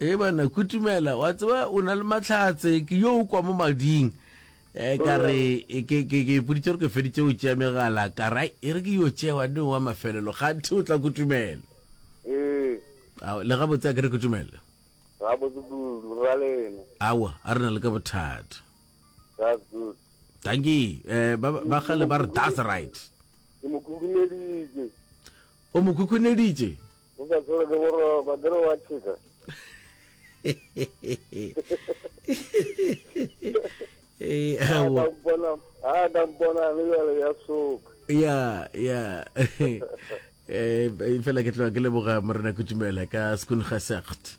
Ee banna kutumela wa tseba o na le matlhatse ke yo o kwa mo mading um ka re ke ke ke ipoditse gore ke feditse o tšea megala ka ra e re ke yo tšewa ne wa mafelelo ganthe o tla kutumela Ee, Ao, le gabotse a ke re kutumela ga botse kudu, ra lena. awa a re na le ka bothata That's good. tanki um ba ba gale ba re that's right Ke mo khukhuneditše. o mo khukhuneditše o ka tsere le gore ba kere wa tšheka a ka mpona le bjale ya soka ya ya um fela ke tloga ke leboga morena kutumela ka school gasacht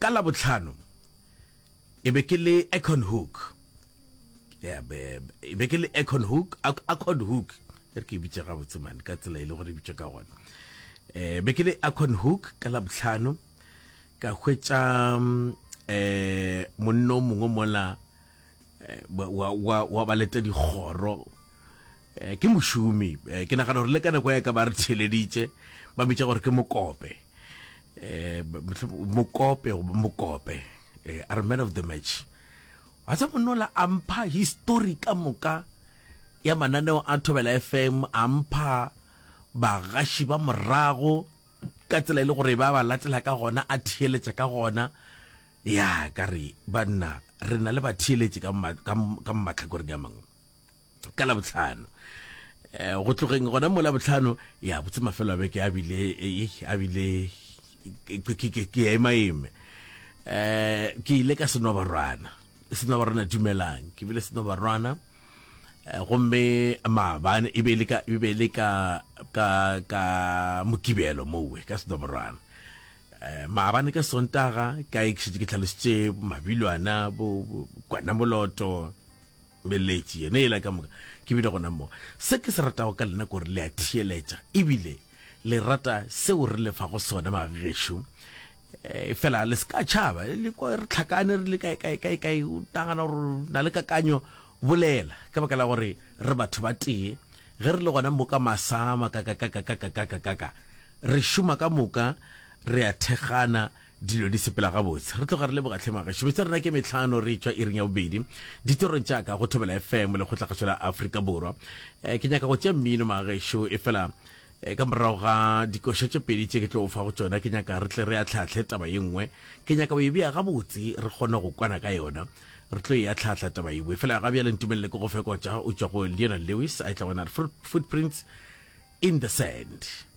Ka Labohlano ke be ke le Acornhoek, yeah, be, be, be ke le Acornhoek, Ac- Acornhoek, e re ke e bitše gabotse mane ka tsela e le gore e bitšwe ka gona. Eh, be ke le Acornhoek ka Labohlano, ka hwetša mm, eh, monno mongwe mola eh, wa, wa, wa, wa ba leta dikgoro Eh, ke mošomi eh, ke nagana gore le ka nako ya ka ba re theleditše ba mmitša gore ke mokope eh, mokope mokope eh, are man of the match wa tsa monola a mpha histori ka moka ya mananeo a thobela fm a mpha bagaši ba morago ka tsela e le gore ba ba latela ka gona a theeletša ka gona ya ka re banna re na le batheeletši ka mmatlhakoreng ya mangwe ka labotlhano eh, go tlogeng gona mo labotlhano ya botse mafelo a beke a bile a bile ke ya emaeme eh ke ile ka seno barwana seno barwana dumelang ke bile seno barwana eh, gomme maabane e be le ka e be le ka ka ka mokibelo mowe ka seno barwana eh, maabane ka sontaga ka ikshitse ke tlhalositse mabilwana bo kwana moloto Beletši yena yela ka moka ke bile gona mo. Se ke se ratago ka lena ke gore le a theeletša ebile le rata seo re le fago sona bagešo e fela le se ka tšhaba le kwa re tlhakane re le kae kae kae kae o nagana gore na le kakanyo bolela ka baka la gore re batho ba tee ge re le gona mo ka masama kakakakakakakakaka re šoma ka moka re a thekgana Dilo di sepela gabotse. Re tloga re leboga tlhe magašo. Betsa rena ke metlhano re tšwa iring ya bobedi. Ditorong tša ka go Thobela FM le kgotlakgašo la Afrika Borwa. Eh, ke nyaka go tšea mmino magašo e fela eh, ka morago ga dikoša tše pedi tše ke tlo fa go tšona ke nyaka re tle re atlhaatlhe taba ye nngwe ke nyaka o e bea gabotse re kgone go kwana ka yona re tlo e atlhaatlha taba yengwe fela ga bjale ntumelele ke go fekotša o tšwa go leonel lewis a e tla gona footprints in the sand